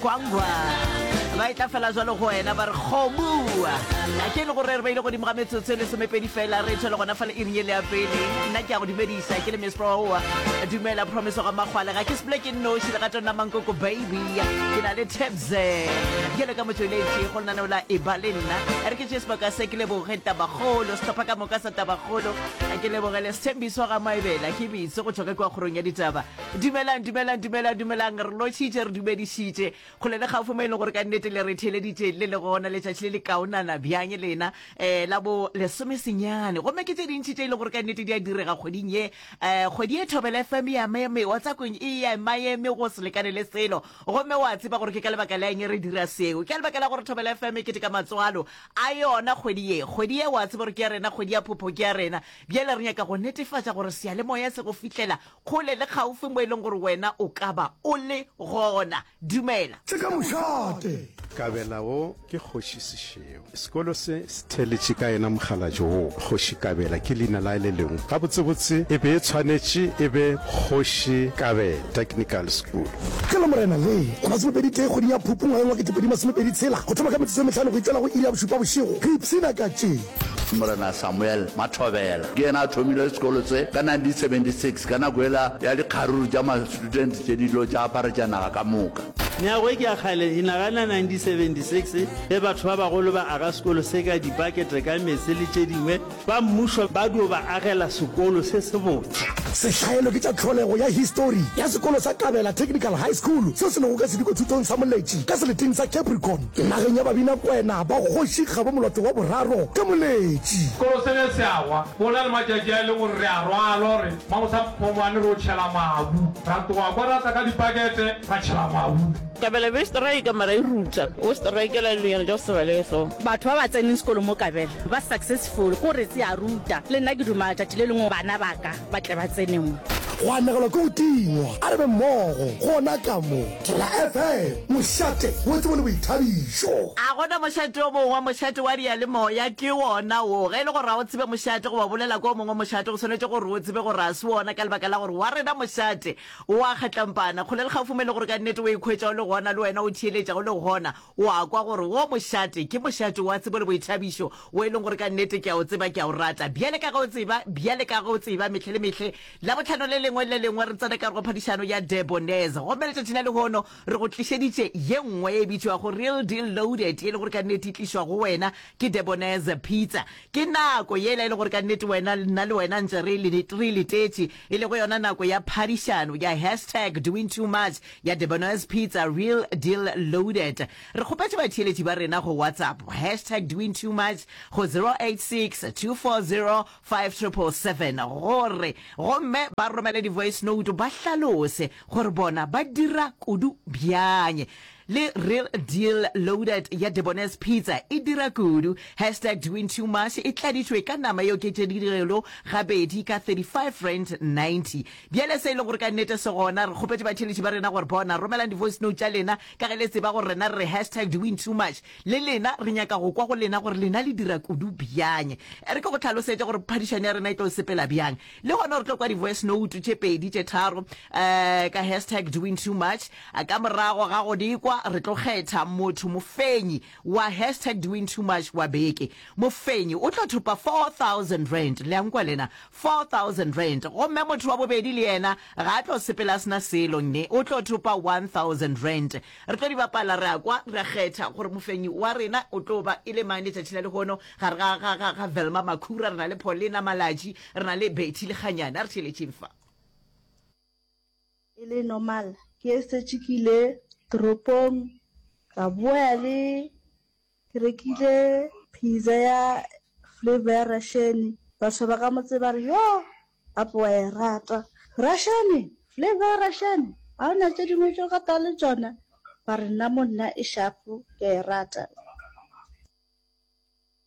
kwangwa ba e tla fela jalo go wena ba re kgomua a ke le gore re beile godimo ga metsotso e lesomepedi fela re tshwele gona fa le iring e le ya pele nna ke ya go dumedisa ke le mesproa dumela promise ga makgwale ga ke sepole ke nnoši le gato nna mankoko baby ke na le tebse ke le ka motsweletši go lena ne o la e ba le nna re ke tše sebaka se ke leboge tabagolo setlhopha ka moka sa tabagolo ke leboge le sethembiso ga maebela ke bitse go tswa ka kwa kgorong ya ditaba Dumelang, dumelang, dumelang, dumelang, re lošitše, re dumedišitše, kgole le kgaufo mo e leng gore ka nnete le re theeleditše le le gona letšatši le le kaonana bjang lena, um la bo lesomesenyane. Gomme ke tše dintši tše e leng gore ka nnete di a direga kgweding ye, um kgwedi ye Thobela FM e a meme, WhatsApp-ong e a maeme go se lekane le selo. Gomme o a tseba gore ke ka lebaka la eng re dira seo, ke ka lebaka la gore Thobela FM e keteka matswalo a yona kgwedi ye. Kgwedi ye o a tseba gore ke ya rena, kgwedi ya phopho ke ya rena, bjale re nyaka go netefatša gore seyalemoya se go fihlela Kgole le kgaufo mo e leng gore wena o ka ba o le gona. Dumela. Tše ka mošate. Kabela wo ke kgoši Sešeo. Sekolo se se theletše ka yena mokgalabje wo. Kgoši Kabela ke leina la le lengwe. Gabotsebotse e be e tshwanetše e be Kgoši Kabela Technical School. Ke la Morena le la masomepedi tee kgweding ya Phupu ngwageng wa ketepedi masomepedi tshela, go thoma ka metsotso e mehlano go itšela go iri ya bošupa bošego, re ipshina ka tše. Morena Samuel Mathobela ke yena a thomile sekolo se ka 1976 ka nako ela ya dikgaruru tša ma-student tše di lo tša aparetša naga ka moka. Meago e ke ya kgale e nagana 1976 ge batho ba bagolo ba aga sekolo se ka dibakete ka meetse le tše dingwe, ba mmušo ba dio ba agela sekolo se sebotse. Sehlaelo ke tša tlholego ya histori ya sekolo sa Kabela Technical High School seo se lego ka Sediko Thutong sa Moletši ka seleting sa Capricorn. Nageng ya Babinakwena ba kgoši ga bo molato wa boraro ka moletši. Sekolo se ne se a wa. Go na le matšatši a e lego gore re a rwalwa re magosa phomwane re o tšhela mabu. Ra tloga kwa ra tla ka dipakete ra tšhela mabu. Kabela be strike mara e ruta go strikela dilonyana tša go se balege so. Batho ba ba tseneng sekolo mo Kabela ba successful ko re tse a ruta. Le nna ke duma tšatši le lengwe bana ba ka. ba tle ba tsene mo. Go anegelwa ke go tingwa, a re be mmogo gona ka mo. Tla FM, mošate wo tsebo le boithabišo. A go na mošate o mongwe? Mošate wa diyalemoya ke wona wo. Ge e le gore ga o tsebe mošate goba o bolela ka o mongwe mošate, o swanetše gore o tsebe gore ga se wona ka lebaka la gore wa rena mošate o a kgatlampana. Kgole le kgaufome le gore ka nnete o ikhwetša o le gona le wena, o theeletša o le gona, O a kwa gore wo mošate ke mošate wa tsebo le boithabišo, wo e leng gore ka nnete ke a o tseba, ke a o rata. Bjale ka ge o tseba, bjale ka ge o tseba, mehla le mehle, Labohlano le lengwe le le lengwe re tsena ka gare go phadišano ya De Bonnes. Gomme letšatši la lehono re go tlišeditše ye nngwe ye e bitšwago Real Deal Loaded, ye e le gore ka nnete e tlišwa go wena ke De Bonnes Pizza. Ke nako yela e le gore ka nnete wena, nna le wena ntše re e letetše, e lego yona nako ya phadišano ya hashtag doingtoomuch. Ya Debono's Pizza Real Deal Loaded. Re kgopetše batheeletši ba rena go WhatsApp hashtag DoingTooMuch go 0862405777 gore gomme ba romele di-voice note ba hlalose gore bona ba dira kudu bjang le Real Deal Loaded ya Debono's Pizza e dira kudu. Hashtag DoingTooMuch e tladitšwe ka nama e oketšegilego gabedi ka 35 rand 90. Bjale se e le gore ka nnete se gona, re kgopetše batheeletši ba rena gore, Bona, romelang di-voicenote tša lena, ka ge le tseba gore rena re re hashtag DiWinTooMuch. Le lena, re nyaka go kwa go lena gore lena le dira kudu bjang. E re ke go hlalosetše gore phadišano ya rena e tlo sepela bjang. Le gona re tlo kwa di-voicenote tše pedi, tše tharo, um ka hashtag DiWinTooMuch. Ka morago ga go di kwa, re tlo kgetha motho mofenyi Wa hashtag doing too much wa beke. Mofenyi o tlo thopa R4,000. Le a nkwa lena? R4,000. Gomme motho wa bobedi le yena ga a tlo sepela a se na selo, nne, o tlo thopa R1,000. Re tlo di bapala, re a kwa, re a kgetha gore mofenyi wa rena o tlo ba e le mang letšatši la lehono, gare ga, ga, ga, ga Velma Makhura, re na le Paulina Malatji, re na le Betty Lekganyane. A re theeletšeng fa. E le normal ke setše ke ile toropong ka boya le ke rekile pizza ya flavour ya Russian. Batho ba ka motse ba re yo gape wa e rata Russian flavour ya Russian ga ona tše dingwe tše o ka tla le tšona mare nna mo nna e sharp ke a e rata.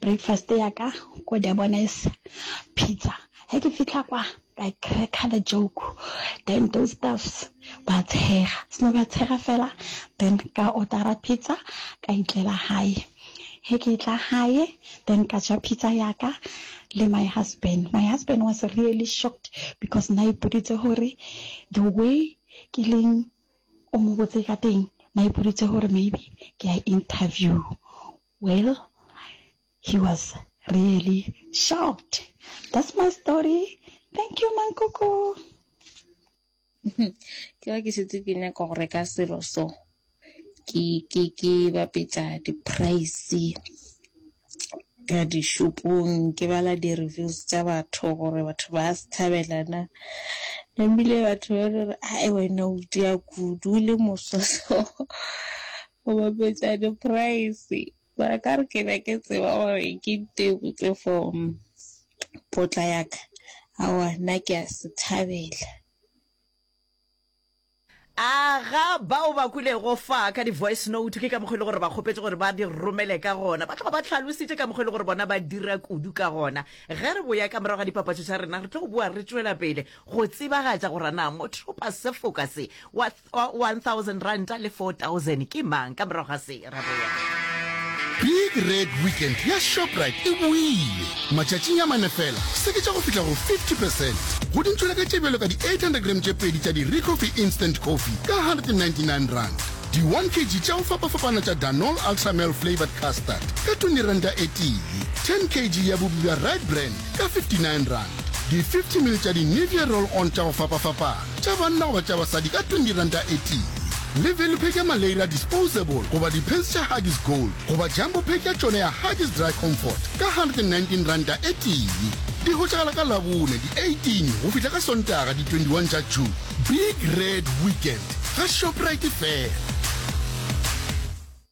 Breakfast ya ka ko Durbanese pizza he ke fihla kwa ka cracker the joke then those staffs ba tshega seno ba tshega fela then ka ordera pizza ka itlela hae he ke tla hae then ka ja pizza ya ka le my husband my husband was really shocked because na ipoditse gore the way ke leng o mo botse ka teng na ipoditse gore maybe ke a interview Well, he was really shocked. That's my story. Thank you, Mankoko. ke ba ke šetse ke nyaka go reka selo so ke ke ke bapetsa di-price ka dishopong ke bala di-reviews tša batho gore batho ba se thabelana nambile batho ba re a wena o dia kudu le mososo go bapetša di price mara ka re ke be ke tseba gore ke tebotse for potla ya ka aowa nna ke a se thabela. A ga bao ba kwilego fa ka di-voice note ke ka mokgwa e le gore ba kgopetše gore ba di romele ka gona? Ba tloga ba hlalositše ka mokgwa e le gore bona ba dira kudu ka gona. Ge re boya ka morago ga dipapatšo tša rena, re tlo go boa re tšwela pele go tsebagatša gore na motheo-pasefoka se wa Wa 1000 ranta le 4000 ke mang? Ka morago ga se, ra boya. Big Red Weekend ya Shoprite e boile! Matšatšing a mane fela, se ke tša go fihla go 50 percent go dintšhweleka tše bjalo ka di 800 grame tše pedi tša di Recoffee Instant Coffee ka R199, di 1 kg tša go fapafapana tša Danol Ultra Male Flavoured Custard ka R20 e tee, 10 kg ya bupi bja Rite Brand ka R59, di 50 ml tša di Nivea Roll On tša go fapafapana. tša banna goba tša basadi ka R20 e tee. Le Velupec ya Maleira Disposable goba dipants tša Huggies Gold goba Jumbo Pack ya tšona ya Huggies Dry Comfort ka R119 e tee. Di hwetšagala ka Labone di 18 go fihla ka Sontaga di 21 tša June. Big Red Weekend ga Shoprite fela.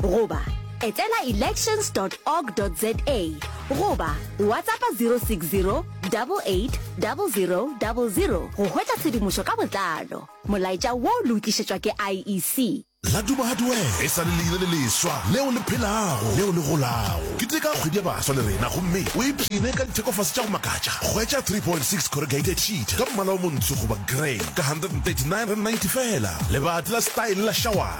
goba etela elections dot org dot za goba WhatsAppa 060 88 00 00 go hwetša tshedimošo ka botlalo. Molaetša wo le o tlišetšwa ke IEC. Laduma Hardware e sa le leina le leswa leo le phelago, leo le golago. Keteka kgwedi ya baswa le rena gomme o ipshine ka dithekofase tša go makatša. Hwetša 3.6 corrugated sheet ka mmala o montsho goba grey ka R139.90 feela. Lebati la style la Shawar.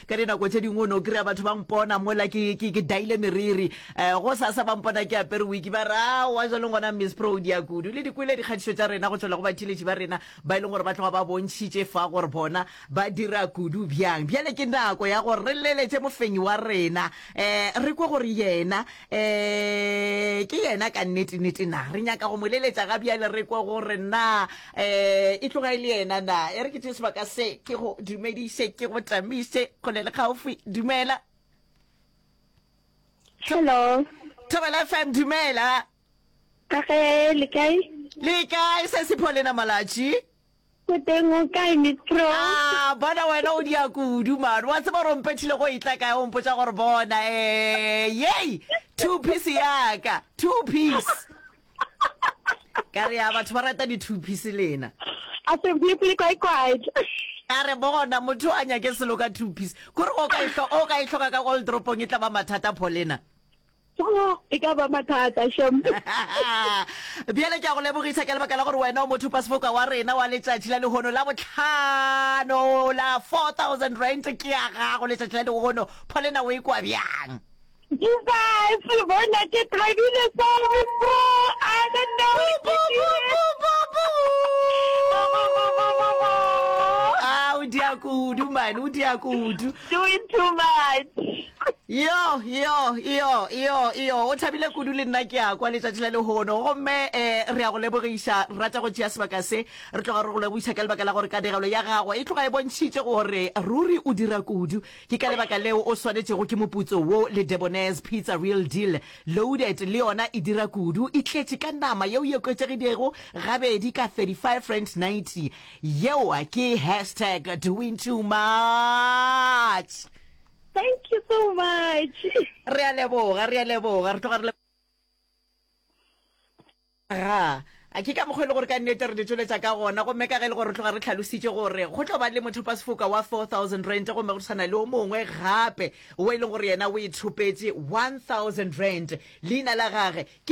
ka dinako tše dingwe o ne o kry-a batho ba mpona mola ke ke- ke daile meriri um go sasa ba mpona ke apere wiki ba re awa jwaleng gona miss pro o dia kudu le di kwele dikgatišo tša rena go tšwela go batheeletši ba rena ba e leng gore ba tloga ba bontšhitše fa gore bona ba dira kudu bjang bjale ke nako ya gore re leletše mofenyi wa rena um re kwe gore yena um ke yena ka nnete-nnete na re nyaka go mo leletša ga bjale re kwe gore na um e tloga e le yena na e re ke tee sebaka se ke go dumediše ke go tamiše kgole le kgaufwi dumela hello thobela fm dumela ka ge le kae le kae se sepho lena malatši Go teng o kae, Miss Pro? Ah, bona wena o dia kudu man. Wa tseba gore mpethile go itla kae o mpotsa gore bona. Eh, yay! Two piece ya ka. Two piece. Ka re ya batho ba rata di two piece lena. A se bue pele kwa quiet. Ka re bona motho a nyake selo ka two piece. Kore o ka e hloka, o ka e hloka ka old dropong e tla ba mathata pholena. Tšaa, e ka ba mathata, Shem. Bjale ke a go lebogisa ka lebaka la gore wena o mothopasefoka wa rena wa letšatši la lehono la bohlano la 4000 rand ke ya gago letšatši la lehono. Pholena o e kwa bjang? Jesus, bona ke thabile sa befo. I don't know what to do. Ah, o dia kudu man, o dia kudu. Doing too much. yo yo yo yo yo o thabile kudu le nna ke a kwa letšatši la lehono gomme um re ya go lebogiša rata go tšea sebaka se re tloga re go lebogiša ka lebaka la gore kanegelo ya gago e tloga e bontšhitše gore ruri o dira kudu ke ka lebaka leo o swanetšego ke moputso wo le debonaise pizza real deal loaded le yona e dira kudu e tletše ka nama yeo e okwetšegidego gabedi ka 35 rand 90 yeo ke hashtag doing too much Thank you so much. Re a leboga, re a leboga, re tloga re le ga a ke ka mokgwa e le gore ka nnete re di tsweletsa ka gona gomme ka ge e le gore re tloga re tlhalositše gore go tlo ba le mothopasefoka wa 4000 rand gomme go tshwana le o mongwe gape o e leng gore yena o e thopetse 1000 rand leina la gage ke